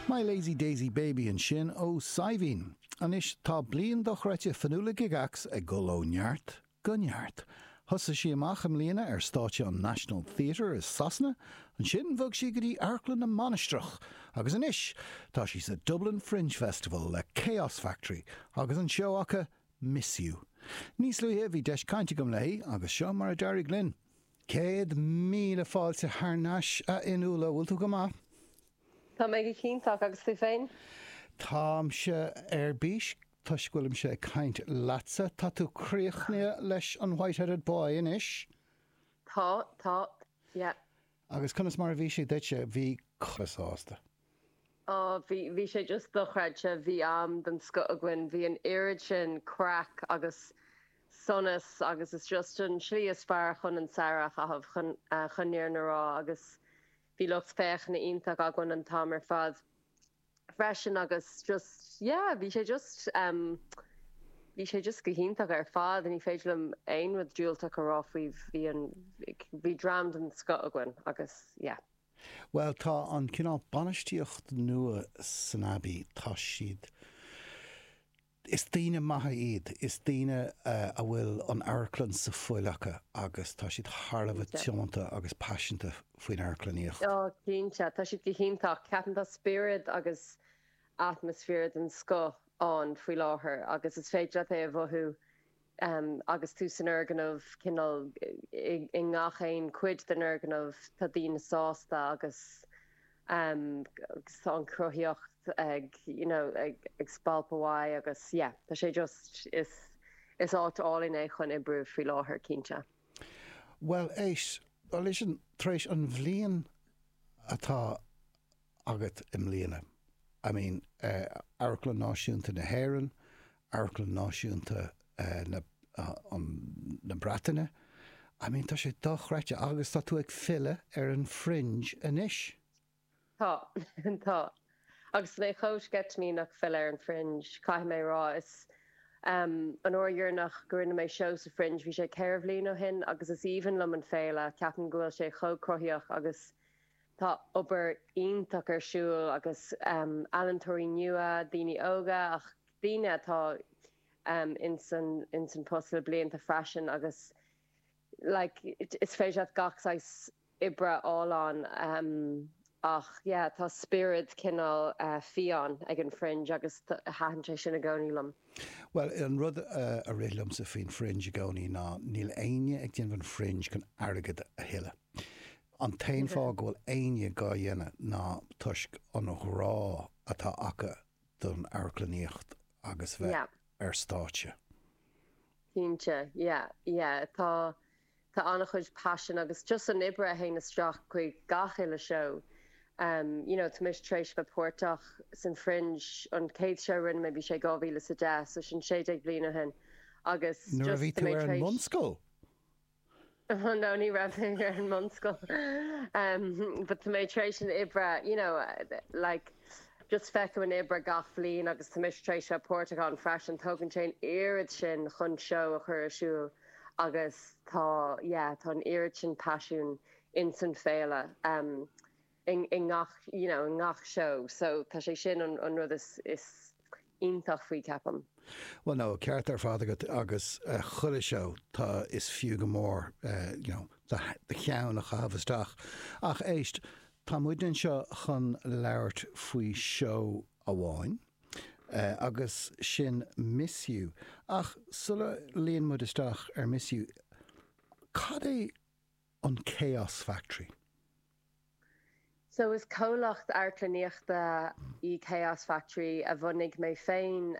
My Lazy Daisy Baby ansin ó Saidhbhín. Anois tá bliain dochreidte Fionnuala Gygax ag dul ó neart go neart. Thosaigh sí amach i mbliana ar stáitse an National Theatre i Sasana, ansin bhog sí go dtí Amharclann na Mainistreach agus anois tá sí sa Dublin Fringe Festival le Chaos Factory agus an seó acu Miss Yeo. Níos luaithe bhí deis caint agam léi agus seo mar a d'éirigh linn. Céad míle fáilte thar n-ais, a Fhionnuala. Bhfuil tú go maith? Tá mé go hiontach, agus tú féin? Táimse ar bís toisc go bhfuilimse ag caint leatsa. Tá tú críochnaithe leis an White-Headed Boy anois? Tá, tá, yeah. Agus conas mar a bhí sé duitse? Bhí cast iontach. Ó, bhí, bhí sé just dochreidte, bhí am den scoth againn, bhí an oiread sin craic agus sonas agus is just an slí is fearr chun an samhradh a chaitheamh, chun, chun an fhírinne a rá agus bhí lucht féachana iontach againn an t-am ar fad. freisin agus just yeah bhí sé just em bhí sé just go hiontach ar fad ní féidir liom aon rud diúltach a rá faoi bhí an bhí dream den scoth againn agus yeah. Bhuel tá an cineál bainistíocht nua san Abbey tá siad Is daoine maithe iad, is daoine a bhfuil an amharclann sa fuil acu agus tá siad thar a bheith tiomanta agus paiseanta faoin amharclannaíocht. Cinnte, tá siad go hiontach. Ceapaim tá spiorad agus atmaisféar den scoth ann faoi láthair agus is féidir leat é a mhothú Agus tú san fhoirgneamh, cineál i ngach aon chuid den fhoirgneamh, tá daoine sásta agus em tá an chruthaíocht ag you know ag spalpadh uaidh agus yeah tá sé just is áit álainn é chun oibriú faoi láthair, cinnte. Bhuel, éist, listen, tar éis an bhliain atá agat i mbliana? I mean Amharclann Náisiúnta na hÉireann, Amharclann Náisiúnta na na Breataine. I mean tá sé dochreidte agus tá tú ag filleadh ar an Fringe anois. Tá, tá. Agus tá mé chomh sceitimíneach filleadh ar an Fringe, caithfidh mé rá. Is ehm, an uair dheireanach go rinne mé seó sa Fringe, bhí sé ceithre bhliain ó shin agus is aoibhinn liom an féile, ceapaim go bhfuil sé chomh cruthaíoch agus Tá obair iontach ar siúl agus ealaíontóirí nua, daoine óga ach daoine atá ins an post le blianta freisin agus like is féidir leat gach saghas oibre a fháil ann ach yeah tá spiorad cineál fiáin ag an Fringe agus taitníonn sé sin i gcónaí liom. Bhuel an rud a rith liomsa faoin Fringe i gcónaí ná níl éinne ag déanamh an Fringe chun airgead a thuilleadh. An t-aon fáth go bhfuil éinne dhá dhéanamh ná toisc an ghrá atá acu don amharclannaíocht agus bheith Yeah. ar stáitse. Cinnte. Yeah, yeah. Tá, tá an-chuid passion agus just an oibre a théann isteach chuig gach uile seó. Em, you know, tá mise tar éis bheith páirteach san Fringe, an chéad seó a rinne mé bhí sé dhá mhíle is a deich, so sin sé déag bliain ó shin. Agus Nuair a bhí tú ar an mbunscoil? No ní raibh mé ar an mbunscoil but tá mé tar éis an oibre you know like just feicim an oibre gach bhliain agus tá mise tar éis bheith páirteach ann freisin tógann sé an oiread sin chun seó a chur ar siúl agus tá yeah tá an oiread sin paisiún in san féile. i ngach you know i ngach seó so tá sé sin an an rud is is iontach faoi ceapaim. Bhuel tá an ceart ar fad agat agus chuile seó tá is fiú go mór you know do do cheann a chaitheamh isteach ach éist tá muid anseo chun labhairt faoi seó amháin agus sin Miss You ach sula luíonn muid isteach ar Miss You cad é an Chaos Factory So is comhlacht amharclannaíochta í Chaos Factory a bhunaigh mé féin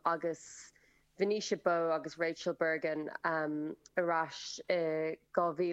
agus Venetia Bowe agus Rachel Bergin ar ais i